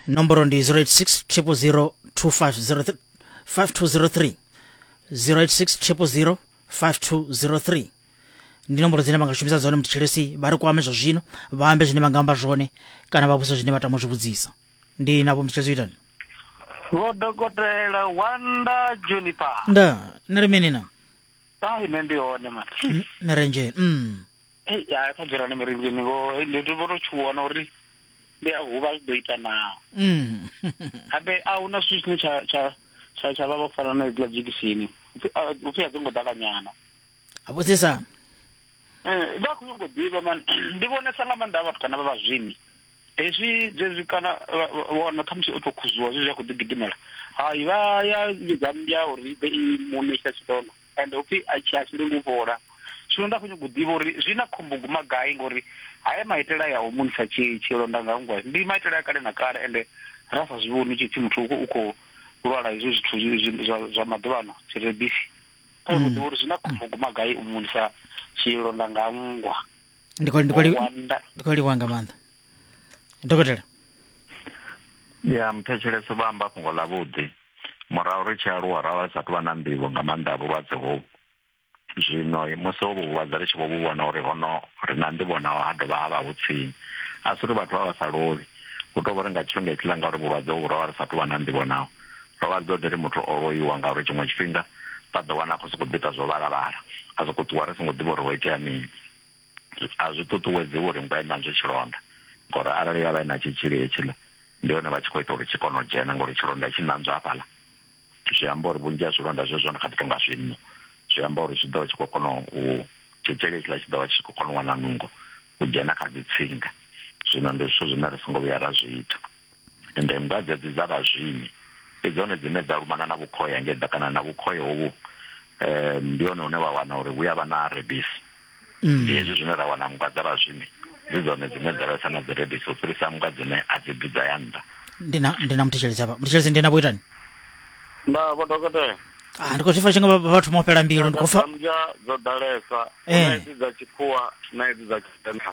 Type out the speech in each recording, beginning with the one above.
nomboro ndi 086 000 5203 086 5203 ndi nomboro dzine vangashumisa dzone mutshilesi vha ri kwame zwa zwino vha ambe zwine vha nga amba zwone kana vha vhusa zwine vha tama u zwi vhudzisa ndi navho mutshilesi u itani vho dokotela wanda juniper nda ni ri mini na ai nṋe ndi hone mara ni renjeni mm. ei ya kha dzulani mirinzini ngo ndi ndi vho to tshuwana uri ndi a huvha zwi ḓo ita naa Mm. habe a huna zwithu zwine tsha tsha tsha tsha vha vha fana na idzila dzhekisini upfi a- upfi a dzi ngo ḓala nyana a vhudzisa Eh, vha khou nyongo ḓivha man ndi vhonesa nga maanḓa a vhathu kana vha vhazwimi hezwi zwezwi kana vha- vha- wana khamusi o to khuzuwa zwezwi a khou ḓi gidimela hai vha ya vhidza mmbya uri i ḓe i muṋe tsha tshidona and upfi a tshi a tshi lengi u fhola zwino nda khou nyanga u ḓivha uri zwi na khombo guma gai ngori haya maitele aya o munisa tshilonda nga ngwa ndi maitele a kale na kale ende ra sa zwi vhoni tshi pfi muthu u khou lwala hezwo zwithu zwa maḓuvhano dzi rebisi kha u ḓivha uri zwi na khombo guma gai u munisa tshilonda nga ngwa ndi khou livhuwa nga maanḓa dokotela ya muthetshelesi vha amba fhungo ḽa vhuḓi murahu ri tshi aluwa ra vha ri sa tou vha na nḓivho nga maanḓa a vhulwadze hovhu zwino musi hovhu vhulwadze ri tshi vho vhu vhona uri hono ri na nḓivho naho ha dovha ha vha hu tsini a si uri vhathu vha vha sa lovhi hu tou vha ri nga tshifhinga itshiḽa nga uri vhulwadze hovhu ro vha ri sa tou vha na nḓivho naho ro vha dzo ḓi ri muthu o loiwa ngauri tshiṅwe tshifhinga vha ḓo wana a khou sokou ḓi ita zwo vhalavhala a sokou ṱuwa ri songo ḓivha uri ho itea mini a zwi ṱuṱuwedzi uri mvha i ṋanzwe tshilonda ngori arali ya vha i na tshitzhili hetshiḽa ndi hone vha tshi khou ita uri tshi kone u dzhena ngori tshilonda tshi ṋanzwa hafhaḽa zwi amba uri vhunzhi ha zwilonda zwezwo ndi kha ḓi tou nga zwinno zwi amba uri zwi ḓo vha tshi khou kona u tshitzhili hetshiḽa tshi ḓo vha tshi khou kona u wana nungo u dzhena kha dzi tsinga zwino ndi zwithu zwine ri songo vhuya ra zwi ita Ende nndwa dzedzi dza vhazwimi ndi dzone dzine dza lumana na vhukhoya nge ḓa kana na vhukhoya hovhu um ndi hone hune wa wana uri vhuya vha na rebisi. Mm. Ndi hezwi zwine ra wana nndwa dza vhazwimi dzi dzone dzine dza vhesa na dzi rebisi u fhirisa nndwa dzine a dzi bvi dza ya nnḓa. Ndi na ndi na muthetshelezi hafha. Muthetshelezi ndi na vho itani? Nda vho dokotela. Ah ndi khou zwi fa tshi nga vha- vha thoma u fhela mbilu ndi khou fa Dzambya dzo ḓalesa, Eh. na edzi dza tshikhuwa na edzi dza tshivenḓa.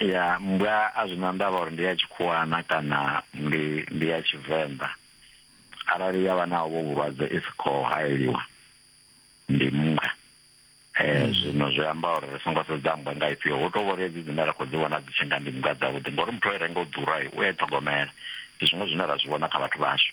ya mmbwa a zwi na ndavha uri ndi ya tshikhuwana kana ndi ndi ya tshivenḓa arali ya vha na vho vhulwadze i si khou hayeliwa ndi mmbwa eh hmm. zwino zwi amba uri ri songo sedza mmbwa nga ifhio hu tou vhori hedzi dzine ra khou dzi vhona dzi tshi nga ndi mmbwa dzavhuḓi ngori muthu o i renga u ḓura u e ṱhogomela ndi zwiṅwe zwine ra zwi vhona kha vhathu vhashu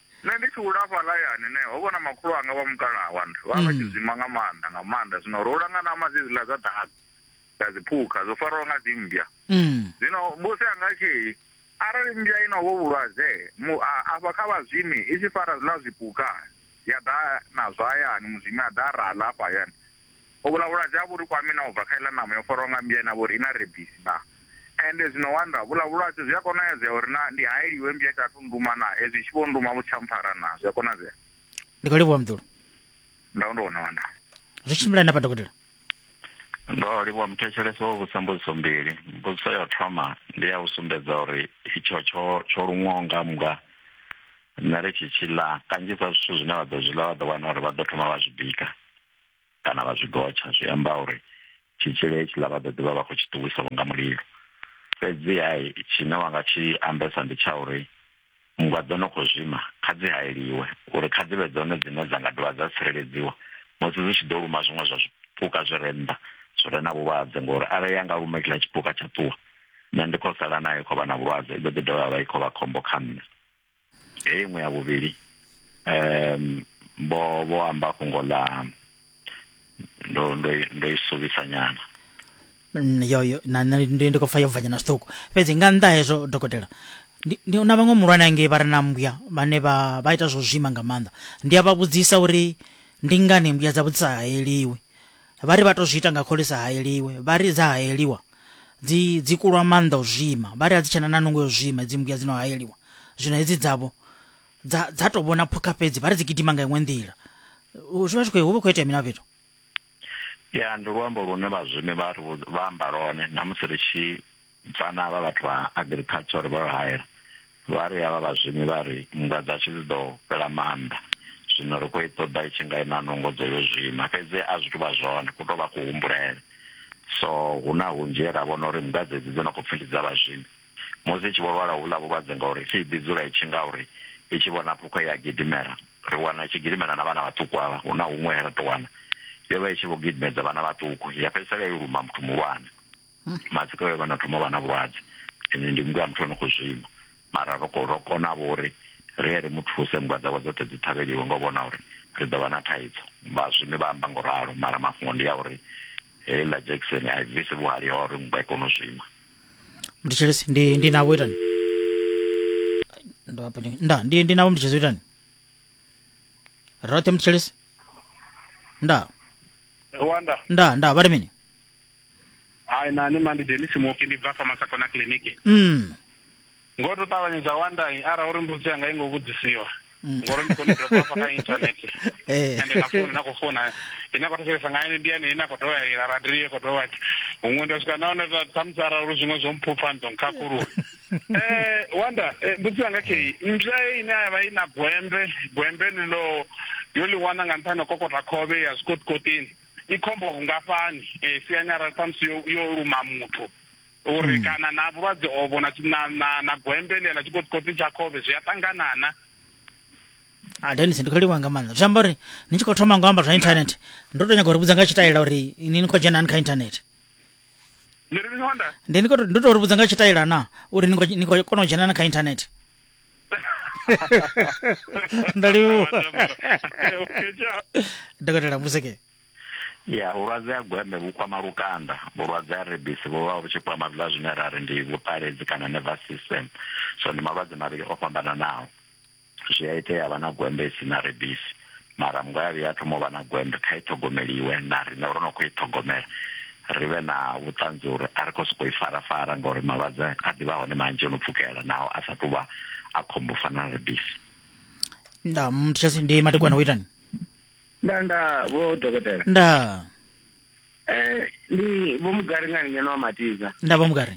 Nṋe ndi tshi hula hafhaḽa hayani ne, ho vha na makhulu anga vha mukalaha wanga. Vha vha vha tshi zwima nga maanḓa, nga maanḓa. Zwino ro hula nga ṋama dzedziḽa dza ḓaka, dza dziphukha, dzo fariwaho nga dzimmbya. Zwino musi a nga tshi, Arali mmbya i na uvho vhulwadze, mu, a, afha kha vhazwimi, i tshi fara zwiḽa zwipuka, ya ḓa nazwo hayani, muzwimi a ḓa a ra ḽa hafha hayani. Uvhuḽa vhulwadze a vhu ri kwami na u bva kha iḽa ṋama yo farwaho nga mmbwa ine a vha uri i na rebisi naa? Ende zwino wanda, vhuḽa vhulwadze zwi a konadzea uri naa ndi haeliwe mmbwa i sa athu nnduma naa? Hezwi i tshi vho nnduma vhu si tsha mpfara naa? Zwi a konadzea. Ndi khou livhuwa Muḓulu. Ndau ndo wana wanda. Zwi tshimbilani hafha dokotela? Ndo livhuwa muthetshelesi o vhudzisa mbudziso mbili. Mbudziso ya u thoma ndi ya u sumbedza uri itsho tsho tsho luṅwaho nga mmbwa nṋe ri tshi tshi ḽa kanzhisa zwithu zwine vha ḓo zwi ḽa vha ḓo wana uri vha ḓo thoma vha zwi bika. kana vha zwi gotsha zwi amba uri tshitzhili hetshiḽa vha ḓo ḓivha vha khou tshi ṱuwisa vho nga mulilo fhedzi hai tshine wa nga tshi ambesa ndi tsha uri nngwa dzo no khou zwima kha dzi hayeliwe uri kha dzi vhe dzone dzine dza nga dovha dza tsireledziwa musi dzi tshi ḓo luma zwiṅwe zwa zwipuka zwi re nnḓa zwi re na vhulwadze ngori arali ya nga luma kila tshipuka tsha ṱuwa nṋe ndi khou sala nayo khou vha na vhulwadze i ḓo ḓi dovha vha i khou vha khombo kha nṋe heyi iṅwe ya vhuvhili um vho vho amba fhungo ḽa ndo ndo ndo i suvhisa nyana mm, yo yo na ndi ndi khou pfa yo bvanyana zwiṱuku fhedzi nga nnḓa hezwo dokotela ndi na vhaṅwe muhulwane angei vha re na mbuya vhane vha vha ita zwo zwima nga maanḓa ndi a vha vhudzisa uri ndi ngani mbuya dza vhudzisa haeliwi vha ri vha to zwi ita nga khole sa haeliwe vha ri dza haeliwa dzi dzi kulwa maanḓa u zwima vha ri a dzi tshena na nungo yo zwima dzi mbuya dzino haeliwa zwino hedzi dzavho dza dza to vhona phukha fhedzi vha ri dzi gidima nga iṅwe nḓila zwi vha zwi khou hu vha khou itea mina fhethu ya ndi luambo lune vhazwimi vha ri vha amba lone na musi ri tshi Vhana havha vhathu vha agriculture vha hayela vha ri havha vhazwimi vha ri nndwa dzashu dzi ḓo fhela maanḓa zwino ri khou i ṱoḓa i tshi nga i na nungo dzo yo zwima fhedzi a zwi tou vha zwone ku tou vha kuhumbulele so hu na hunzhi he ra vhona uri nndwa dzedzi dzo no khou pfhi ndi dza vhazwimi musi i tshi vho lwala houḽa vhulwadze ngauri i tshi ḓi dzula i tshi nga uri i tshi vhona phukho ya gidimela ri wana i tshi gidimela na vhana vhaṱuku avha hu na huṅwe he ra tou wana yo vha i tshi vho gidimedza vhana vhaṱuku ya fhedzisela i luma muthu muhulwane matsiko vhe vha no thoma vha na vhulwadze ende ndi muthu a muthu ano khou zwima mara ro ro kona vho uri ri ye ri mu thuse nngwa dzavho dzoṱhe dzi ṱhavheliwe ngo vhona uri ri ḓo vha na thaidzo vha zwimi vha amba ngo ralo mara mafhungo ndi ya uri heiḽa jackson a i bvisi vhuhali ha uri nngwa i kone u zwima mditshelesi ndi ndi navho itani ndo hafha ndi- nda ndi ndi navho mditshelesi itani roṱhe mditshelesi nda wanda nda nda vha ri mini hai na ni mandi denisi muoki ndi bva fa masako na kiliniki mm. ngo to ṱavhanyedza wandai arali uri mbudzi yanga i ngo vhudzisiwa mm. ngori ndi kone dropa fa kha internet eh. ende na foni na khou fona ine khou thetshelesa nga ene ndi yane ine a khou dovha ya ila radio i khou dovha huṅwe nda swika naone khamusi arali uri zwiṅwe zwo mphupha ndo nkhakhulula eh wanda eh, mbudzi yanga kei mzwa ine a vha i na gwembe gwembe ni ḽo yo ḽi wana nga nṱhani kokota khovhe ya zwikotikotini i khombo vhungafhani eh, siani arali ṱhamusi yo, yo luma muthu uri hmm. kana na vhulwadze ovho na, na, na, na gwembe ḽia ḽa tshikotikoti tsha khovhe zwi a ṱanganana a ah, denis ndi khou livha nga maanḓa zwi amba uri ni tshi khou thoma ngo amba zwa internet ndo to nyaga uri vhudza nga tshitaela uri ni ni khou dzhena ani kha internet ndi ri honda ndi ni khou ndo to ri vhudza nga tshitaela na uri ni khou kona u dzhena na kha internet ndaliwo okay, ciao. dokotela museke ya vhulwadze ha gweme vhu kwama lukanda vhulwadze ha rebisi vhu vha vhu tshi kwama zwiḽa zwine ra ri ndi vhuṱaledzi kana nervous system so ndi malwadze mavhili o fhambananaho zwi a itea vha na gwembe i si na rebisi mara mngwavhi ya thoma u vha na gwende kha i ṱhogomeliwe na riṋe ro no khou i ṱhogomela ri vhe na vhuṱanzi uri a ri khou sokou i farafara ngauri malwadze a ḓivha hone manzhi o no pfukela naho a sa tou vha a khombo fana na rebisi nda mthesi ndi matekwana wo itani nda nda vho dokotela nda eh ndi vho mugari ngani ngeno wa matiza nda vho mugari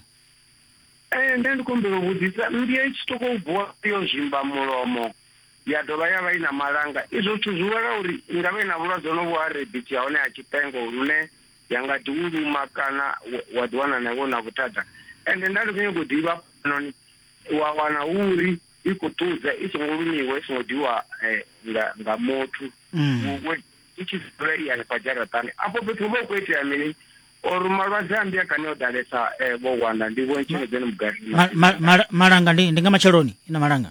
eh nda ndi kombela u vhudzisa mmbia i tshi toko u vuwa yo zwimba mulomo ya dovha ya vha i na malanga. Izwo zwithu zwi wela uri i nga vha i na vhulwadze honovhu ha rebisi ha hone ha tshipengo lune ya nga ḓi u luma kana wa ḓiwana na iwe na vhuthada ende nda ndi khou nyago u ḓivha noni wa wana hu uri i khou ṱudza i songo lumiwa i songo ḓiwa eh, nga nga muthu mm. i tshi dzula i hanefha dzharaṱani afho fhethu hu vha hu khou itea mini or malwadze a mbi a kane o ḓalesa eh, vho wanda ndi vho ntshengedzeni mugarimmalanga ndi nga matsheloni i na malanga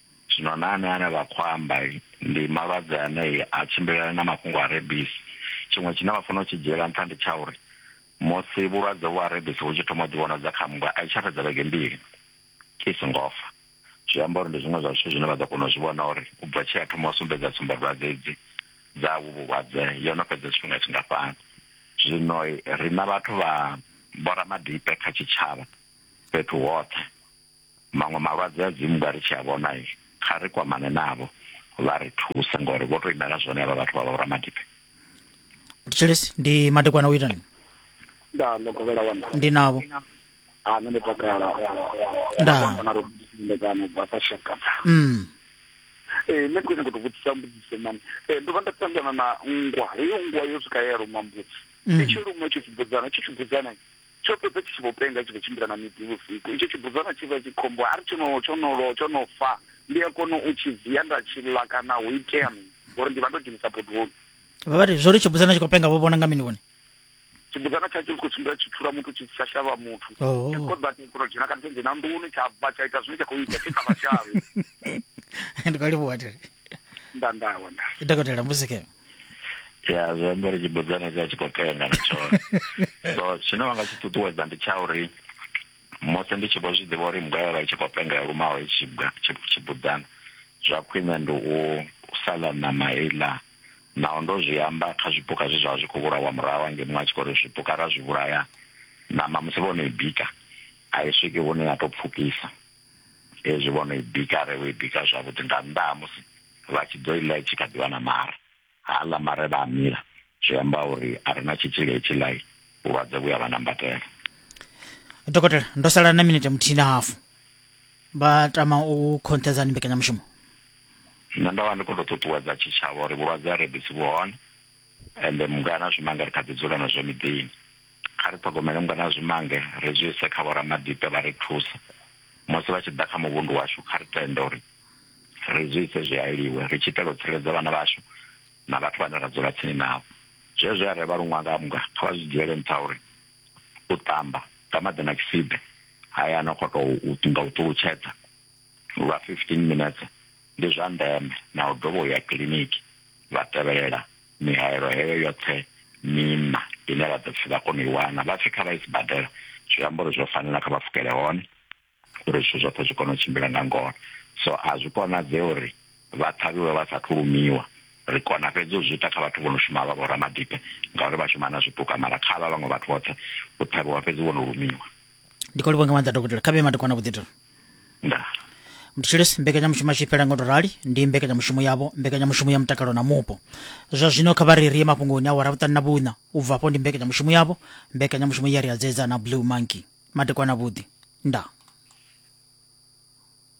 Zwino na anea ane vha khou amba ndi malwadze ane a tshimbilelana na mafhungo a rabies. Tshiṅwe tshine vha fanela u tshi dzhiela nṱha ndi tsha uri musi vhulwadze uvhu ha rabies vhu tshi thoma u ḓivhonadza kha mmbwa a i tsha fhedza vhege mbili i songo fa. Zwi amba uri ndi zwiṅwe zwa zwithu zwine vha ḓo kona u zwi vhona uri u bva tshe ya thoma u sumbedza tsumbadwadze hedzi dza uvhu vhulwadze yo no fhedza tshifhinga tshingafhani. Zwino riṋa vhathu vha vho ramadipe kha tshitshavha fhethu hoṱhe, Maṅwe malwadze a dzimu nga ri tshi a vhona kha ri kwamane navho vha ri thuse ngori vho tou imela zwone avha vhathu vha vha ramadibe Tshilisi ndi madekwana u ita ni nda ndo kovhela wana ndi navho ha nṋe ndi takala nda na ro ndekana bva sa shaka mm eh nṋe khwine kuto vhudzisa mbudziso mani eh ndo vha nda ṱangana na nngwa heyo nngwa yo swika ya luma mbudzi mm. i tshi luma tshi tshi budzana tshi tshi budzana tsho fhedza tshi tshi vho penga tshi vho tshimbila na miḓi vhusiku itsho tshibudzana tshi vha tshi khombo ari tsho no tsho no lo tsho no fa ndi a kona u tshi dzia nda tshi ḽa kana hu itea mini ngori ndi vha ndo dzhenisa bodoni vha vha ri zwo ri tshibudzana tshi khou penga vho vhona nga mini vhone tshibudzana tsha tshi khou tshimbila tshi thula muthu tshi tsha shavha muthu oh. tshi khou ḓa tshi khou dzhena kana tshi dzhena nḓuni tsha bva tsha ita zwine tsha khou ita tshi sa vha shavhe ndi khou livhuwa tere nda nda wanda dokotela mbusike ya zwi amba uri tshibudzana tshi a tshi khou tenda na tshone so tshine wa nga tshi ṱuṱuwedza ndi tsha uri musi ndi tshi vho zwi ḓivha uri mugaya vha tshi khou pengela lumaho tshibudzana zwa khwine ndi u sa ḽa ṋama iḽa naho ndo zwi amba kha zwipuka zwe zwa vha zwi khou vhulawa murahu hange muṅwe a tshi khou ri zwipuka ra zwi vhulaya ṋama musi vho no i bika a i swiki hune ya tou pfukisa hezwi vho no i bika re vho i bika zwavhuḓi nga nnḓa ha musi vha tshi ḓo i ḽa i tshi kha ḓi vha na mare ha ḽa mare vha a mila zwi amba uri a re na tshitzhili hetshi ḽai vhulwadze vhu ya vha nambatela dokotela ndo sala na minete muthihi na hafu vha tama u khonṱhedzani mbekanyamushumo nṋe ndo vha ndi khou tou ṱuṱuwedza tshitshavha uri vhulwadze ha rebisi vhu hone ende mungana zwimanga ri kha ḓi dzula nazwo miḓini kha ri ṱhogomele nngwe na zwimange ri zwi ise kha vhoramadipe vha ri thuse musi vha tshi ḓa kha muvhundu washu kha ri tende uri ri zwi ise zwi hayeliwe ri tshi itela u tsireledza vhana vhashu na vhathu vhane ra dzula tsini navho zwezwo ya revha luṅwanga mga kha vha zwi dzhiele nṱha uri u ṱamba nga maḓi na tshisibe haya no khou tou nga u ṱulutshedza lwa 15 minetse ndi zwa ndeme na u dovha u ya kiliniki vha tevhelela mihaelo heyo yoṱhe mina ine vha ḓo pfhi vha kone u i wana vha pfhi kha vha i sibadela zwi amba uri zwo fanela kha vha pfukele hone uri zwithu zwoṱhe zwi kone u tshimbila nga ngona so a zwi konadzee uri vha ṱhavhiwe vha sathu lumiwa ri kona fhedzi u zwi ita kha vhathu vho no shuma vha vhoramadipe ngauri vha shuma na zwipuka mara kha vha vhaṅwe vhathu vhoṱhe u ṱhavhiwa fhedzi vho no lumiwa ndi khou livhonga maanḓa dokotela kha vhe madekwana vhuḓitelo ndaa mthetshelesi mbekanyamushumo yashu i fhela ngo to rali ndi mbekanyamushumo yavho mbekanyamushumo ya mutakalo na mupo zwa zwino kha vha ri ri ye mafhungoni awara vhuṱanu na vhuṋa u bva afho ndi mbekanyamushumo yavho mbekanyamushumo ya ri adzedza na blue monkey madekwana vhuḓi ndaa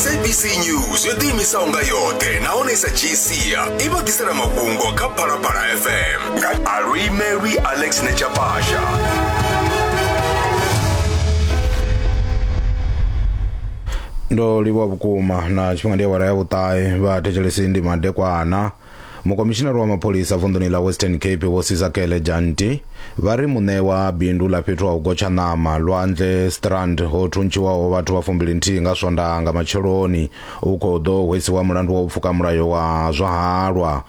sabc news yo ḓiimisaho nga yoṱhe nahone sa gcia i vha ḓisela mafhungo kha phalaphala fm nga alwimelwi alex nechapasha ndo livhuwa vhukuma na tshifhinga ndi awara ya vhuṱahe vha thetshelesi ndi madekwana mukomishinari wa mapholisa vunḓuni ḽa western cape vho sizakele janti vha ri muṋe wa bindu ḽa fhethu ha u gotsha ṋama lwanzhe strand ho thuntshiwaho vhathu vha fumbili nthihi nga swondaha nga matsheloni u khou ḓo hwesiwa mulandu wa u pfuka mulayo wa zwa halwa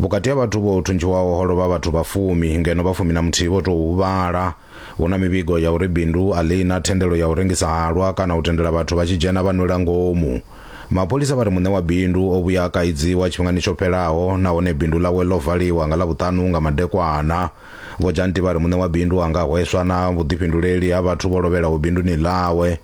vhukati ha vhathu vho thuntshiwaho ho lovha vhathu vha fumi ngeno vha fumi na muthihi vho tou huvhala Hu na mivhigo ya uri bindu a ḽi na thendelo ya u rengisa halwa kana u tendela vhathu vha tshi dzhena vha nwela ngomu. Mapholisa vha ri muṋe wa bindu o vhuya a kaidziwa tshifhingani tsho fhelaho nahone bindu ḽawe ḽo valiwa nga Ḽavhuṱanu nga madekwana. Vho Janti vha ri muṋe wa bindu a nga hweswa na vhuḓifhinduleli ha vhathu vho lovhelaho binduni ḽawe.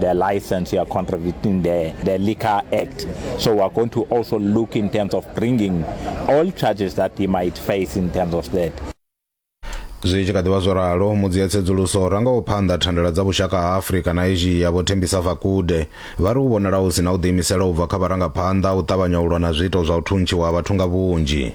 their license, you are contradicting the, the Liquor Act. So we're going to also look in terms of bringing all charges that he might face in terms of that. zwi tshi kha ḓivha zwo ralo mudzi ya tsedzuluso ra nga u phanḓa thandela dza vhushaka ha afurika na asia vho thembisa fakude vha ri u vhonala hu si na u ḓiimisela u bva kha vharangaphanḓa u ṱavhanya u lwa na zwiito zwa u thuntshiwa ha vhathu nga vhunzhi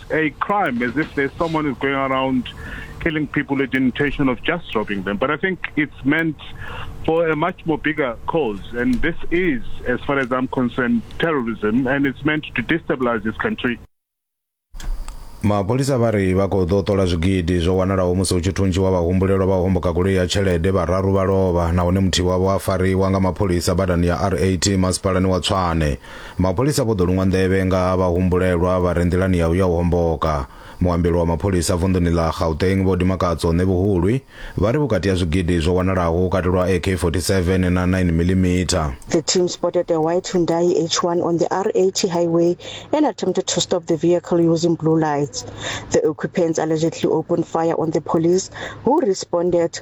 a crime as if there's someone who's going around killing people with the intention of just robbing them. But I think it's meant for a much more bigger cause. And this is, as far as I'm concerned, terrorism, and it's meant to destabilize this country. mapholisa vha ri vha khou ḓo ṱola zwigidi zwo wanalaho musi hu tshi thuntshiwa vhahumbulelwa vha u homboka goloi ya tshelede vhararu vha lovha nahone muthihi wavho a fariwa nga mapholisa badani ya rat masipalani wa tswane Mapholisa vho ḓo luṅwa nḓevhe nga ha vhahumbulelwa vha re nḓilani ya u ya u homboka. Muambeli wa mapholisa vunḓuni ḽa Gauteng Vho Dimakatso Ṋevhuhulwi vha ri vhukati ha zwigidi zwo wanalaho hu katelwa AK 47 na 9 millimeter. The team spotted a white Hyundai H1 on the R80 highway and attempted to stop the vehicle using blue lights. The occupants allegedly opened fire on the police, who responded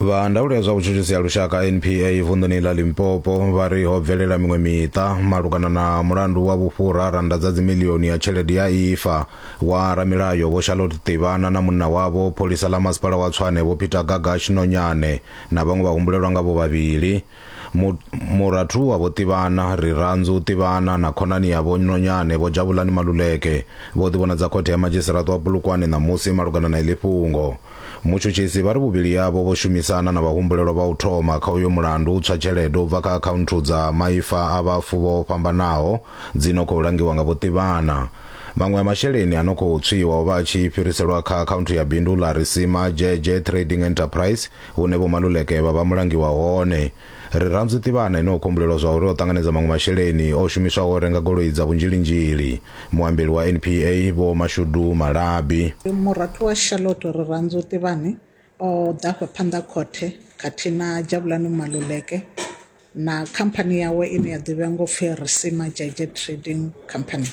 vha ndaulo ya zwa vhutshutshisi ya lushaka npa vunḓuni ḽa limpopo vha ri ho bvelela miṅwe miṱa malugana na mulandu wa vhufhura randa dza dzimilioni ya tshelede ya ifa wa ramilayo vho charlotte ṱivhana na munna wavho pholisa ḽa masipala wa tswane vho peter gagash nonyane na vhaṅwe vha humbulelwa nga vho vhavhili murathu wa vho ṱivhana rirandzu ṱivhana na khonani ya vho nonyane vho dzhavhulani maluleke vho ḓivhonadza khothe ya madzhisiraṱo wa bulukwane ṋamusi malugana na iḽi fhungo mutshutshisi vha ri vhuvhili yavho vho shumisana na vhahumbulelwa vha u thoma kha uyo mulandu u tswa tshelede u bva kha akhaunthu dza maifa a vhafu vho fhambanaho dzi no khou langiwa nga vho ṱivhana maṅwe a masheleni a no khou tswiwa o vha a tshi fhiriselwa kha akhaunthu ya bindu ḽa risima dzhedzhe trading enterprise Hune Vho Maluleke vha vha mulangi wa hone. Rirhandzu Tivhana ene o khumbulelwa zwa uri o ṱanganedza maṅwe masheleni o shumiswaho u renga goloi dza vhunzhilinzhili. Muambeli wa NPA Vho Mashudu Malabi. Murathu wa Charlotte Rirhandzu Tivhani o ḓa afha phanḓa ha khothe khathihi na Jabulani Maluleke. na khamphani yawe ine ya ḓivhea ngo pfi Risima Jaeger Trading Company.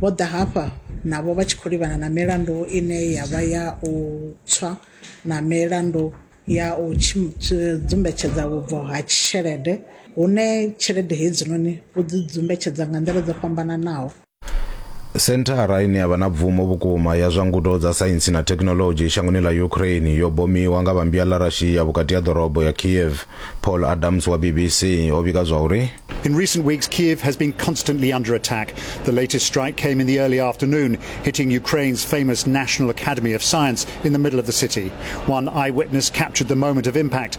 Vho ḓa hafha navho vha tshi khou livhana na milandu ine ya vha ya u tswa na milandu ya u dzumbetshedza vhubvo ha tshelede hune tshelede hedzinoni vho dzi dzumbetshedza nga nḓila dzo fhambananaho. Senthara ine ya vha na bvumo vhukuma ya zwa ngudo dza saintsi na thekhinoḽodzhi shangoni ḽa Ukraine yo bomiwa nga vhambia ḽa Russia vhukati ha ḓorobo ya Kiev. Paul Adams wa BBC o vhiga zwa uri. In recent weeks, Kiev has been constantly under attack. The latest strike came in the early afternoon, hitting Ukraine's famous National Academy of Science in the middle of the city. One eyewitness captured the moment of impact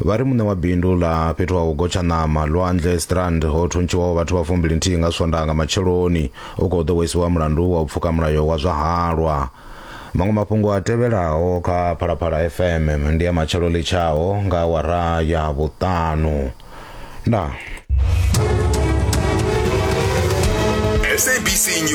vha ri muṋe wa bindu ḽa fhethu ha u gotsha ṋama lwandle strand ho thuntshiwaho vhathu vha fumbili nthihi nga swondaha nga matsheloni u khou ḓowesiwa mulandu wa u pfuka mulayo wa zwa halwa maṅwe mafhungo a tevhelaho kha phalaphala fm ndi ya matshelo litshaho nga awara ya vhuṱanu ndaa sabc news